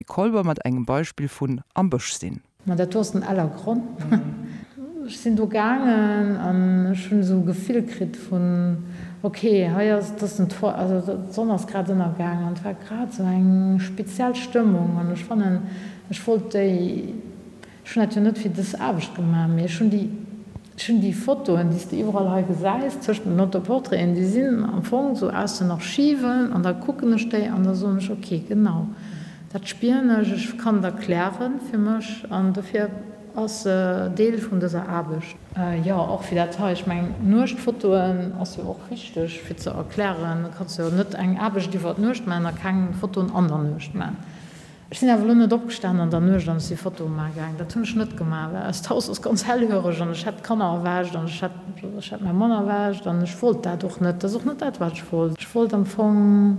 Kolber mat engem Beispill vun am Bësch sinn. Ma dat do ass den Eller Gronn. Ech sinn do gaangen an ech hunn esou e Gefill kritt vun, ok, hei ass, et ass den Toit, also d'Sonn ass grad ënnergaangen an et war grad esou eng speziell Stëmmung an ech fannen, ech wollt déi. Ech hunn dat jo net fir dës Aarbecht gemaach, mee ech hunn déi, ech hunn déi Fotoen, déi s de iwwerall hei gesäis tëschent den Autoportraiten, déi sinn am Fong esou aus den Archiven an da kucken ech déi an da soen ech, ok, genau dat spieren ech, ech kann et erklären fir mech an dofir ass se Deel vun dëser Aarbecht. Jo, och fir dat hei, ech mengen d'Nuechtfotoen ass jo och wichteg fir ze erklären, du kanns jo net eng Aarbecht iwwer d'Nuecht maachen a keng Fotoen an der Nuecht maachen. Ech sinn awer elo net opgestanen an der Nuecht an ech si Fotoe maache gaang. Dat hunn ech net gemaach, well eist Haus ass ganz hellhöreg an ech hätt d'Kanner erwächt an ech hätt, ech hätt mäi Mann erwächt an ech wollt dat och net. Dat ass och net dat, wat ech wollt. Ech wollt am Fong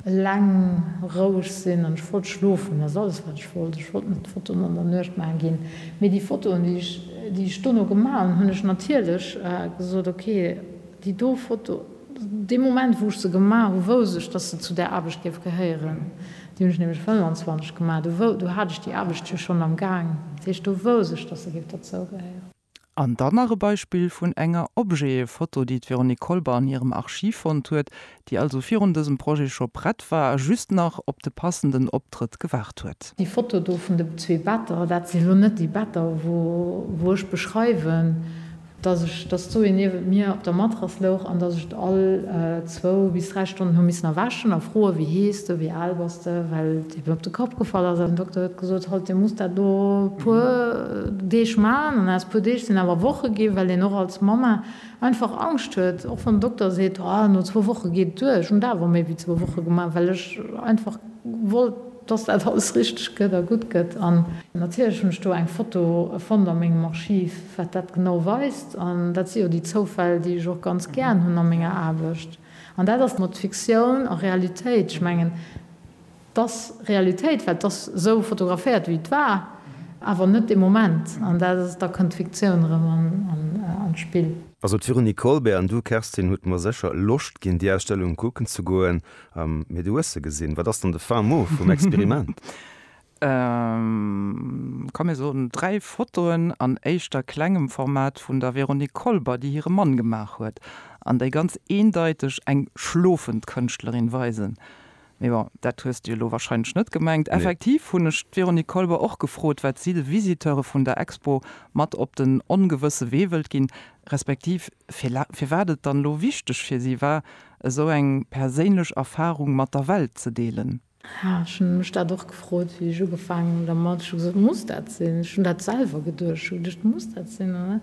eleng, roueg sinn an ech wollt schlofen. Dat ass alles, wat ech wollt. Ech wollt net Fotoen an der Nuecht maache ginn. Mee déi Fotoen, déi ech, déi ech dono gemaach hunn, hunn ech natierlech gesot, okay, déi do Foto, dee Moment, wou ech se gemaach hu, wousst ech, dass se zu där Aarbecht géif gehéieren. Déi hunn ech nämlech 25 gemaach. Do wou, do hat ech déi Aarbecht jo schonn am Gaang. Dat heescht, do wousst ech, dass se géif derzougehéieren. An dann nach e Beispill vun enger Objetfoto, déi d'Véronique Kolber an hirem Archiv fonnt huet, déi also virun dësem Projet scho prett war a just nach op de passenden Optrëtt gewaart huet. Déi Foto do vun de zwee Better, dat si lo net déi Better, wou, wou ech beschreiwen, dass ech, dass d'Zoé niewent mir op der Matrass louch an dass ech et all zwou bis dräi Stonnen hu missen erwächen a froen, Wéi hees de? Wéi al bass de? Well et eben op de Kapp gefall ass. An den Dokter huet gesot, Halt, dir musst dat elo e puer Deeg maachen. An aus puer Deeg sinn awer Woche ginn, well een och als Mamma einfach Angscht huet, och wann den Dokter seet, Ah, no zwou Woche geet et duer. Ech hunn et awer méi wéi zwou Woche gemaach, well ech einfach wollt, dass dat alles richteg gëtt a gutt gëtt. An natierlech hunn ech do eng Foto fonnt a mengem Archiv, wat dat genau weist. An dat si jo déi Zoufäll, déi ech och ganz gären hunn a menger Aarbecht. An dat ass mat Fiktioun a Realitéit, ech mengen, dass Realitéit, well t'ass esou fotograféiert, wéi et war, awer net de Moment. An dat ass, da kënnt d'Fiktioun erëm an d'Spill. Also d'Véronique Kolbert an du, Kerstin, hutt mer sécher Loscht ginn, déi Ausstellung kucken ze goen. Mee du hues se gesinn. Wat ass dann de fin mot vum Experiment? Ka mir soen, dräi Fotoen an éischter klengem Format vun der Véronique Kolber, déi hire Mann gemaach huet an déi ganz eendeiteg eng schlofend Kënschtlerin weisen. Mee bon, dat hues de jo elo warscheinlech net gemengt. Effektiv hunn ech d'Véronique Kolber och gefrot, wat si de Visiteure vun der Expo mat op den ongewësse Wee wëllt ginn, respektiv firwat et dann elo wichteg fir si war, esou eng perséinlech Erfarung mat der Welt ze deelen. Jo, ech hu mech dat och gefrot, wéi ech ugefaangen hunn dermat. Ech hu gesot, Muss dat sinn? Ech hunn dat selwer geduecht. Ech hu geduecht, Muss dat sinn? An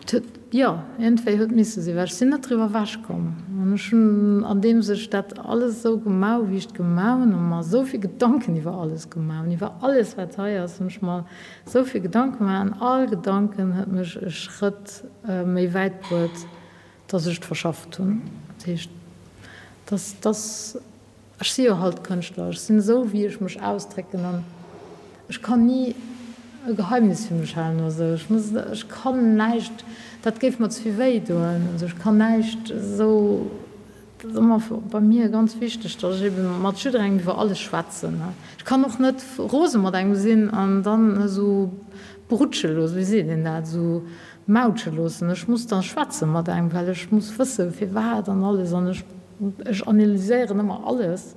et huet, jo, iergendwéi huet misse sinn, well ech sinn net driwwer ewech komm. An ech hunn, andeems ech dat alles esou gemaach hu wéi ech et gemaach hunn, a mer esou vill Gedanken iwwer alles gemaach hunn, iwwer alles wat hei ass, hunn ech mer esou vill Gedanken gemaach. An all Gedanken huet mech e Schrëtt méi wäit bruet Dass ech et verschafft hunn. Dat heescht, dass, dass, ech si jo halt Kënschtler, ech sinn esou wéi ech mech ausdrécken an ech kann ni e Geheimnis fir mech halen oder esou. Ech muss, ech kann näischt, dat géif mer ze vill wéi doen. Also ech kann näischt esou, dat ass ëmmer bei mir ganz wichteg, dass ech eben mat jidderengem iwwer alles schwätzen. Ech kann och net rose mat engem sinn an dann esou brutschelo, wéi seet een dat, esou Mautsche loossen. Ech muss da schwätze mat engem, well ech muss wësse firwat an alles an ech ech analyséieren ëmmer alles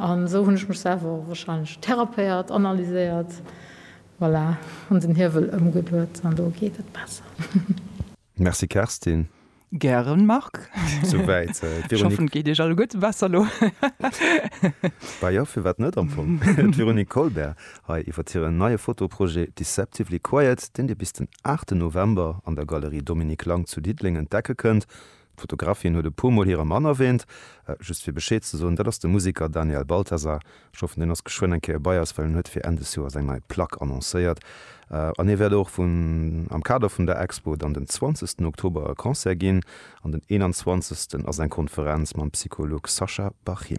an esou hunn ech mech selwer wahrscheinlech therapéiert, analyséiert, voilà, hunn den Hiewel ëmgeduet an elo geet et besser. Merci Kerstin. Gären Marc. Sou wäit d'Véronique. Ech hoffen et geet Iech alleguerte besser elo. Bah jo, firwat net am Fong. D'Véronique Colbert hei iwwert hiren neie Fotoprojet Deceptively Quiet, deen Dir bis den 8 November an der Galerie Dominique Lang zu Diddeleng entdecke kënnt. D'Fotografin huet e puer Mol hire Mann erwäänt. Just fir Bescheed ze soen, dat ass de Museker Daniel Balthasar, Ech hoffen deen ass geschwënn eng Kéier bei eis, well en huet fir Enn des Joers eng nei Plack annoncéiert. An hie wäert och vun am Kader vun der Expo dann den 20 Oktober e Concert ginn an den 21 ass eng Konferenz mam Psycholog Sascha Bachin.